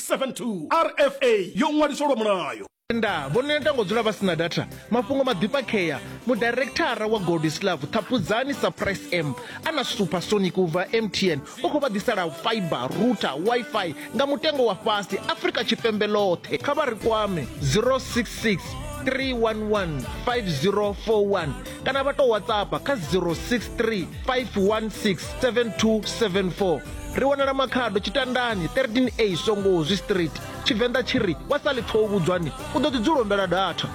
672 rfa yo ṅwaliswa lwa mulayo nda vho neta ngo dzula vha sina data mafhungo maḓifhakhea mudirekthara wa goldislav ṱhaphudzani surprise m a na supersonic u bva mtn u khou vha ḓisela fiber router wifi nga mutengo wa fhasi afrika tshipembe ḽoṱhe kha vha ri kwame 066 311 5041 kana vha tou whatsappa kha 063 516 7274 ri wanala makhado tshitandani 13a songozi street tshivenḓa tshi ri wa sa ḽipfa u vhudzwani u ḓo ḓi dzulo mbela datha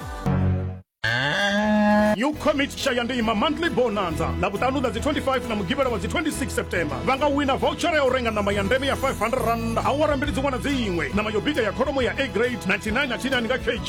new commit shayandima monthly bonanza na vhuṱanu ḽa dzi 25 na mugivhela wa dzi 26 september vha nga wina voucher ya u renga ṋama ya ndeme ya 500 rand awara mbili dziṅwe na dziṅwe ṋama yo bika ya kholomo ya a grade 99 na 99 nga kg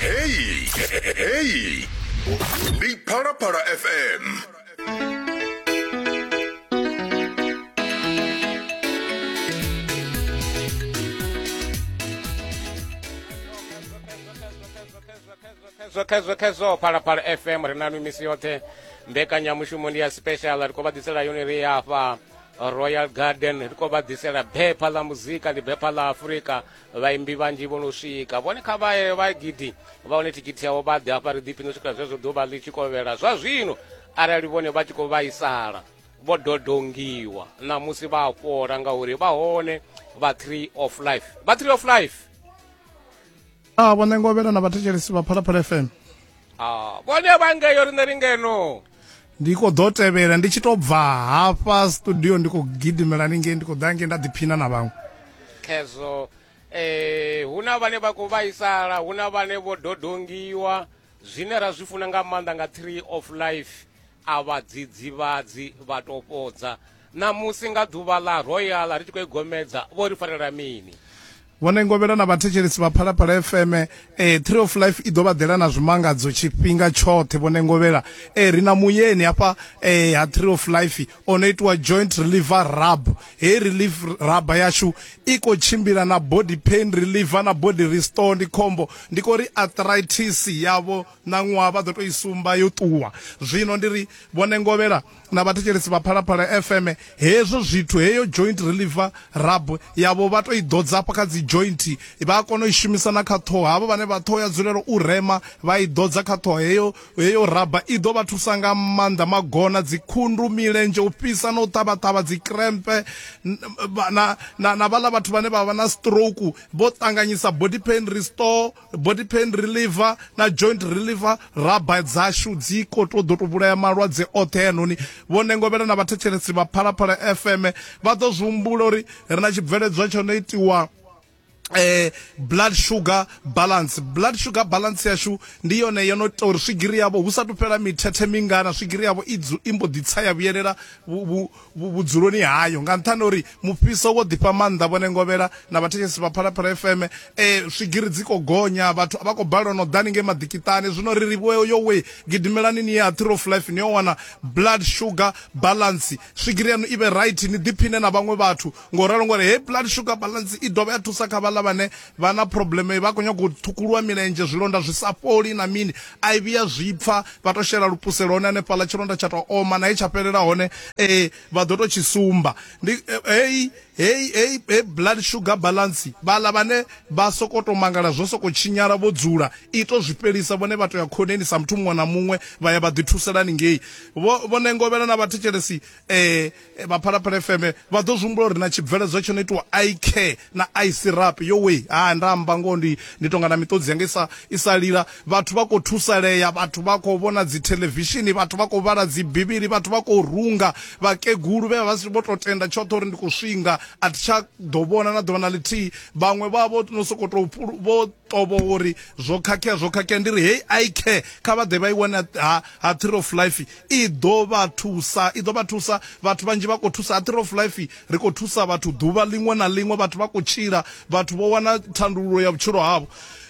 Hey, hey, hey. Ni para para FM. khezwo khezwo khezwo phalaphala fm ri na nwi misi yoṱhe mbekanyamushumo ndi ya special ri khou vha ḓisela yone ri ya hafha royal garden ri khou vha ḓisela bepha ḽa muzika ndi bepha ḽa afurika vhaimbi vhanzhi vho no swika vhone kha vha vha gidi vha hone thikhithi yavho vha ḓi hafha ri ḓipfhi no swikela zwezwo ḓuvha ḽi tshi kovhela zwa zwino arali vhone vha tshi khou vhaisala vho dodongiwa ṋamusi vha fhola ngauri vha hone vha tree of life vha tree of life a ah, vho ṋengovhela na vhathetshelesi vha phalaphala fm a ah, vhone vha ngeyo riṋe ri ngeno ndi khou ḓo tevhela ndi tshi tou bva hafha studio ndi khou gidimela ningei ndi khou ḓa ngei nda ḓiphina na vhaṅwe khezwo um hu na vhane vha khou vhaisala hu na vhane vho dodongiwa zwine ra zwi funa nga maanḓa nga tree of life a vhadzidzivhadzi vha topodza Ṋamusi nga ḓuvha ḽa Royal ri tshi khou i gomedza, vho ri farela mini? Vhone Ngovhela na vhathetshelesi vha Phalaphala FM eh, Tree of Life i ḓo vha ḓela na zwimangadzo tshifhinga tshoṱhe Vhone Ngovhela eh, ri na muyeni hafha eh, ha Tree of Life o no itiwa joint reliever rub heyi relief rub yashu i khou tshimbila na body pain reliever na body restore ndi khombo ndi khou ri arthritis yavho na ṅwaha vha ḓo tou i sumba yo ṱuwa zwino ndi ri Vhone Ngovhela na vhathetshelesi vha phalaphala fm hezwo zwithu heyo joint reliever rab yavho vha to i ḓodza afha kha dzi joint vha a kona u i shumisa na kha ṱhoho havho vhane vha ṱhoho ya dzulelo u rema vha i ḓodza kha ṱhoho heyo heyo raba i ḓo vha thusa nga maanḓa magona dzikhundu milenzhe u fhisa na u ṱavhaṱavha dzi krempe na na vhaḽa vhathu vhane vha vha na stroke vho ṱanganyisa body pain restore body pain reliever na joint reliever raba dzashu dzi ko to ḓo to vhulaya malwadze oṱhe yanoni vho nengovhela na vhathetshelesi vha phalaphala fm vha ḓo zwi humbula uri ri na tshibveledzwa tsho no itiwa eh blood sugar balance blood sugar balance yashu ndi yone yo no ita uri swigiri yavho hu sa tu fhela mithethe mingana swigiri yavho i mbo ḓi tsa ya vhuyelela vhudzuloni hayo nga nṱhani uri mufhiso wo ḓifha maanḓa vhone ngovhela na vhathetshelesi vha phalaphala fm e eh, swigiri dzi khou gonya vhathu vha khou balelwa no ḓani ngei maḓikiṱani zwino ri ri vhoyo yo we gidimelani ni ye ha theory of life ni yo wana blood sugar balance swigiri yanu i vhe right ni ḓiphine na vhaṅwe vhathu ngo ralo ngori hei blood sugar balance i dovha ya thusa kha vhaḽa vhane vha na problem vha khou nyanga u ṱhukuluwa milenzhe zwilonda zwi sa fholi na mini a i vhuya zwi pfa vha to shela lupuselo hone hanefhaḽa tshilonda tsha to oma naye tsha fhelela hone um vha ḓo to tshi sumba ndi eh, heyi heyi heyi he blood sugar balance vhaḽa vhane vha soko to mangala zwo soko tshinyala vho dzula i to zwi fhelisa vhone vha to ya khoneni sa muthu muṅwe na muṅwe vha ya vha ḓi thuselani ngei vho ngovhela na vhathetshelesi eh vha phalaphala fm vha ḓo zwihumbula uri na tshibveledzwa tsho no itiwa i care na i syrup yo we ha nda amba ngoho ndi ndi tonga na miṱodzi yanga isa isa lila vhathu vha khou thusalea vhathu vha khou vhona dzi televishini vhathu vha khou vhala dzi bivhili vhathu vha khou runga vhakegulu vhe vha vho to tenda tshoṱhe uri ndi khou swinga a thi tsha ḓo vhona na ḓuvha na ḽithihi vhaṅwe vha vho no sokou tou vho tovho uri zwo khakhea zwo khakhea ndi ri hei i care kha vha ḓe vha i wane ha ha tree of life I ḓo vha thusa, i ḓo vha thusa. Vhathu vhanzhi vha khou thusa. A Tree of Life ri khou thusa vhathu ḓuvha ḽiṅwe na ḽiṅwe. Vhathu vha khou tshila, vhathu vho wana thandululo ya vhutshilo havho.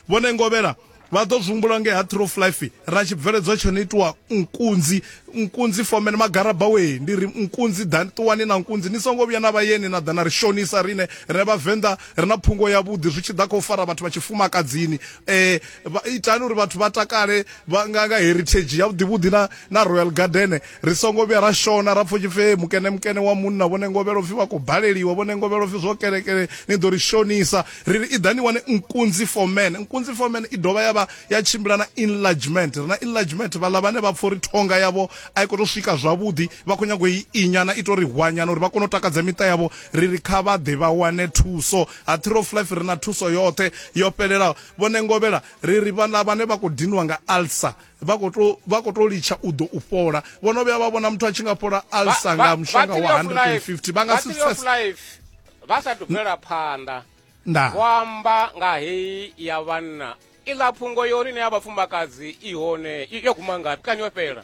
Vhone Ngovhela vha ḓo zwi humbula nge ha Tree of Life ra tshi bveledzwa tsho no itiwa nkunzi, nkunzi fomeni magaraba we ndi ri nkunzi ḓani ṱuwani na nkunzi ni songo vhuya na vha yeni na ḓa na ri shonisa rine rine vhavenḓa ri na phungo ya vhuḓi zwi tshi ḓa kha u fara vhathu vha tshifumakadzini eh itani uri vhathu vha takale vha nga nga heritage ya vhuḓivhuḓi na na royal garden ri songo vhuya ra shona ra pfo tshipfe mukene mukene wa munna vhone ngovhelo pfi vha khou baleliwa vhone ngovhelo pfi zwo kelekele ni ḓo ri shonisa ri ri i ḓani wane nkunzi for man nkunzi for man i dovha ya vha ya tshimbila na enlargement ri na enlargement vhaḽa vhane vha pfo uri thonga yavho a i khou tou swika zwavhuḓi vha khou nyago i inyana i tou ri hwanyana uri vha kone u takadza miṱa yavho ri ri kha vha ḓe vha wane thuso ha three of life ri na thuso yoṱhe yo fhelelaho vhone ngovhela Ri ri vhaḽa vhane vha khou dinwa nga alsa vha khou tou vha khou tou litsha u ḓo u fhola. Vho no vhuya vha vhona muthu a tshi nga fhola alsa nga mushonga wa 150 vha nga si pfese vha sa thu bvela phanḓa vho amba nga heyi ya vhanna iḽa phungo yo ri ne ya vhafumakadzi i hone yo guma ngafhi kani yo fhela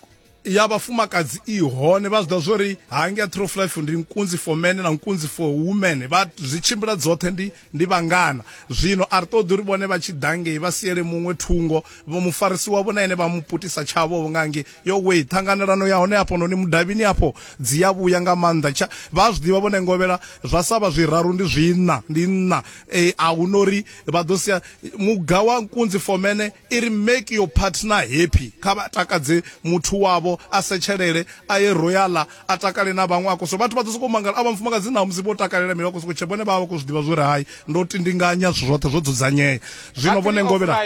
ya vhafumakadzi i hone vha zwiḓa zwo ri hangi a trof life ndi nkunzi for men na nkunzi for women vha zwi tshimbila dzoṱhe ndi ndi vhangana zwino a ri ṱoḓi uri vhone vha tshi ḓa ngei vha siele muṅwe thungo vho mufarisi wavho na ene vha mu putisa tshavho vho nga ngei yo wei ṱhanganelano ya hone hafho noni mudavhini hafho dzi ya vhuya nga maanḓa tsha vha zwi ḓivha vhone ngovhela zwa sa vha zwiraru ndi zwiṋa ndi nṋa e, a hu no ri vha ḓo sia muga wa nkunzi for mene I ri, Make your partner happy. Kha vha takadze muthu wavho, a setshelele, a ye royala, a takale na vhaṅwe. A khou so, vhathu vha ḓo sokou mangala, a vhafumakadzi ṋamusi vho takalela mini? Vha khou sokou tsheba, vhone vha vha vha khou zwi ḓivha zwo ri hai, ndo tindinganya zwithu zwoṱhe zwo dzudzanyea. Zwino vhone ngoho vhe na.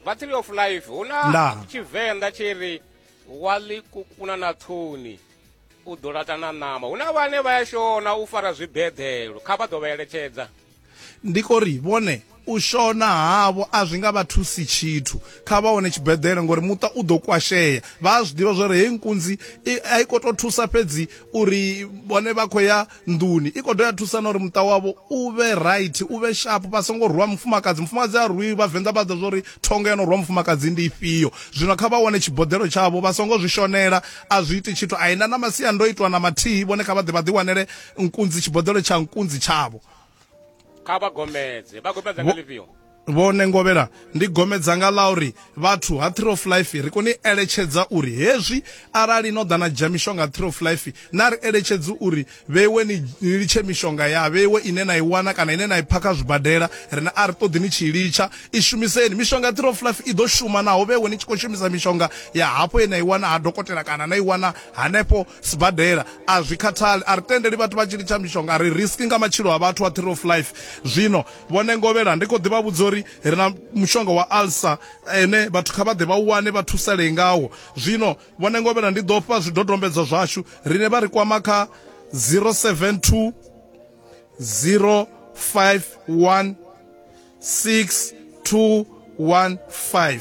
Battery of life, hu na Tshivenḓa tshi ri, Wa ḽi kukuna na ṱhuni. u ḓo laṱa na ṋama hu na vhane vha ya shona u fara zwibeḓelo kha vha ḓo vha eletshedza ndi ko ri vhone u shona havho a zwi nga vha thusi tshithu kha vha wane tshibeḓele ngori muṱa u ḓo kwashea vha a zwi ḓivha zwori heyi nkunzi a i khou tou thusa fhedzi uri vhone vha khou ya nḓuni i khou ḓo ya thusa na uri muṱa wavho u vhe right u vhe sharp vha songo rwa mufumakadzi mufumakadzi a rwi vhavenḓa vha ḓa zwa uri thonga ya no rwa mufumakadzi ndi ifhio zwino kha vha wane tshiboḓelo tshavho vha songo zwi shonela a zwi iti tshithu a ina na masiandoitwa na mathihi vhone kha vha ḓe vha ḓi wanele nkunzi tshiboḓelo tsha nkunzi tshavho kha vha gomedze vha gomedza nga ḽifhio Vhone ngovhela ndi gome dzanga ḽa uri vhathu ha Tree of Life ri koni eletshedza uri hezwi arali no ḓa na dzhia mishonga Tree of Life na ri eletshedzi uri vheiwe ni litshe mishonga ya vheiwe ine na i wana kana ine na i pha kha zwibadela rine a ri ṱoḓi ni tshi litsha i shumiseni mishonga Tree of Life i ḓo shuma naho vheiwe ni tshi khou shumisa mishonga ya hafho ye na i wana ha dokotela kana na i wana hanefho sibadela a zwi khathali a ri tendeli vhathu vha tshi litsha mishonga ri risk nga matshilo a vhathu a Tree of Life zwino Vhone ngovhela, ndi khou ḓi vha vhudza uri ri na mushonga wa alsa une vhathu kha vha ḓe vha u wane vha thusalee ngawo. Zwino, vhone ngovhela, ndi ḓo fha zwidodombedzwa zwashu, riṋe vha ri kwama kha 072 051 6215.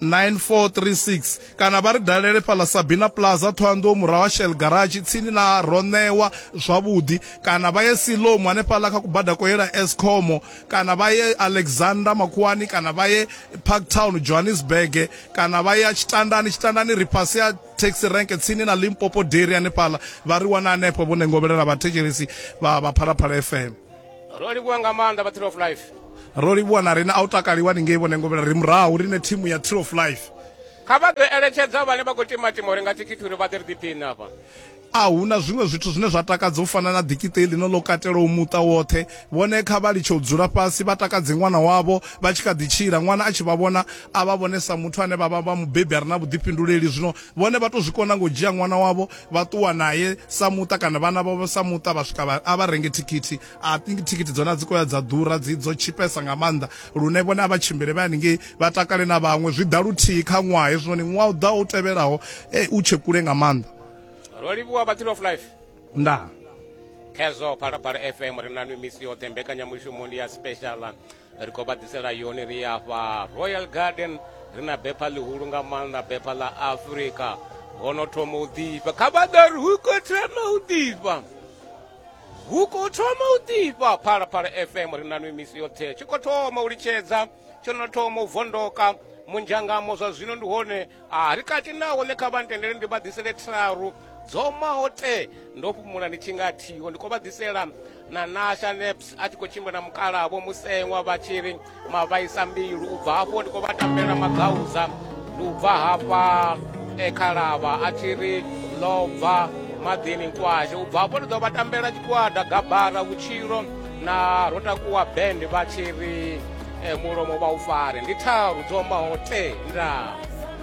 9436 kana vha ri dalele fhaḽa Sabina Plaza Thohoyanḓou murahu ha Shell Garage tsini na Ronewa zwavhuḓi kana vha ye Siloam hanefhaḽa kha kubada ko yela Eskom kana vha ye Alexander Makhuwani kana vha ye Parktown Johannesburg kana vha ya Tshitandani Tshitandani ri fhasi ya taxi rank tsini na Limpopo Dairy hanefhaḽa vha ri wana hanefho vho nengovhelela vhathetshelesi vha vha Phalaphala FM ro livhuwa nga maanḓa vha tree of life ro livhuwa na rine a u takaliwa ni ngei vhone ngovhela ri murahu rine thimu ya tree of life kha vha ḓo eletshedza vhane vha khou timatima uri nga thikhithi uri vha ḓe ri ḓiphiṋe afha a hu na zwiṅwe zwithu zwine zwa takadza u fana na ḓikiṱe ḽino ḽo katelaho muṱa woṱhe vhone kha vha litshe u dzula fhasi vha takadze ṅwana wavho vha tshi kha ḓi tshila ṅwana a tshi vha vhona a vha vhone sa muthu ane vha vha vha mubebi a re na vhuḓifhinduleli zwino vhone vha tou zwi kona ngo dzhia ṅwana wavho vha ṱuwa naye sa muṱa kana vhana vhavho sa muṱa vha swika a vha renge thikhithi i think thikhithi dzone a dzi koya dza ḓura dzi dzo tshipesa nga maanḓa lune vhone a vha tshimbile vha haningei vha takale na vhaṅwe zwi ḓa luthihi kha ṅwaha hezwinoni ṅwaha u ḓaho u tevhelaho e u tshe kule nga maanḓa ro livhuwa battle of life ndaa khezwo phalaphala fm ri na misi yoṱhe mbekanyamushumo ndi ya special ri khou vha ḓisela yone ri afha royal garden ri na bepha ḽihulu nga maanḓa bepha ḽa afrika ho no thoma u ḓifha kha vha ḓa ri hu khou thoma u ḓifha hu khou thoma u ḓifha phalaphala fm ri na nwi misi yoṱhe tshi khou thoma u litshedza tsho no thoma u vondoka munzhangamo zwa zwino ndi hone A ri kati naho ne kha vha ntendele ndi vha ḓisele tharu dzo maho te ndo fhumula ndi tshi nga thiho ndi khou vha ḓisela na nasha neps a tshi khou tshimbila na mukalavo museṅwa vha tshi ri mavhaisa mbilu u bva hafho ndi khou vha tambela magauza ndi u bva hafha e khalavha a tshi ri lobva maḓini nkwashe u bva hafho ndi ḓo vha tambela tshigwada gabara vhutshilo na ro takuwa band vha tshi ri eh, mulomo vha u fare ndi tharu dzo maho te ndaa